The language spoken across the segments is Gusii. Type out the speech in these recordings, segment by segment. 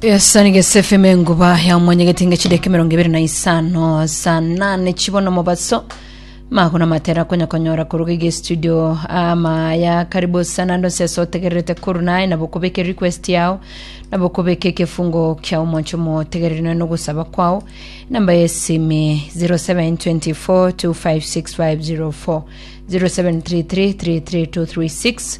Esani gesefeme enguba ya omwanya getinga chideka emerongo ebere na isano saa nane chibono mobaso magona matera konya konyora koruga ige studio ama ya karibu sana ndo sese otegererete koru naye nabo kubeke request yao nabo kubeke kefungo kia omoncho motegerere naye nogosaba kwao namba ya esimi 0724256504 07333336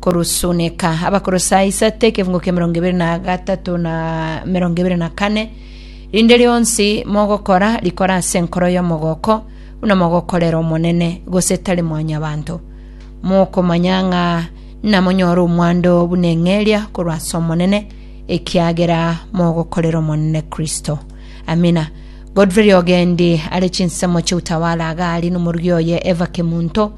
Korusuneka Abakolosai isate ekefungo kia emerongo ebere na gatato na emerongo ebere na kane Rinde rionsi mogokora, rikore ase enkoro y'omogooko, buna mogokorera Omonene, gose tari mwanyabanto, mokomanya ng'a namonyore omwando buna eng'eria korwa ase Omonene, ekiagera mogokorera Omonene Kristo. Amina. Godfrey Riogendi are chinsemo chi'utawala agaarie nomorugi oye Eva Kemunto,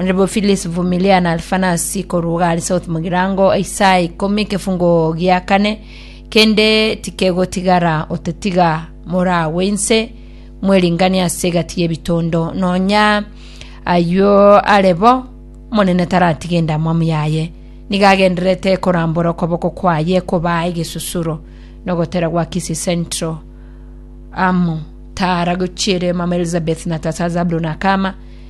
Onde bo Phyllis Vumilia na Alphanasi korwa Ugali South mogirango isaa ikomi ekefungo gia kane, kende tikegotigara otetiga moragwe inse mweringanie ase egati y'ebitondo, nonya ayio are bo, Omonene taratiga endamwamu yaye. Nigo agendererete korambora okoboko kwaye kobaa egesusuro nogotera gwa Kisii Central amo Tara gochiere Mama Elizabeth na Tata Zabulon Akama,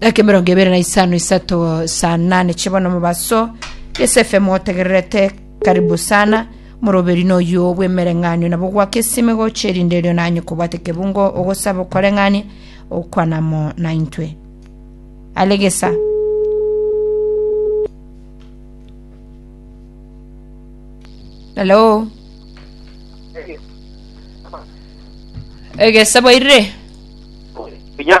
Dakika emerongo ebere na isano isato saa nane chibono mobaso yes fm otegererete karibu sana moroberi noyo bw'emereng'anio nabo gwaka esime gocha erinde erio nanye kobwate kebungo ogosaba okoreng'ania okwanamo naintwe alegesa hello egesa bwairire Pinya.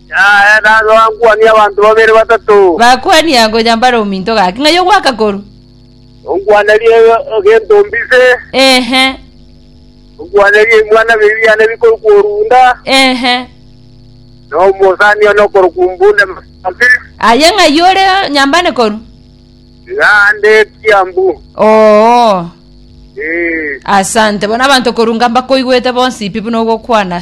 Yaya, nabe oankwanie abanto babere batato. Bakwania ngonya mbare ominto gake, ng'ai ogoaka korwa? Onkwanerie egento mbise. Ehe, Onkwanerie ebimwana bibiri biane bikorokwa orunda, ehe. na omosani one okorokwa ombunde masambe. Aye ng'ai ore nyambane korwa? Naende ekiambu. Oo, Ee. asante. Bono abanto korwa Ngamba koigwete bonsi pi buna ogokwana.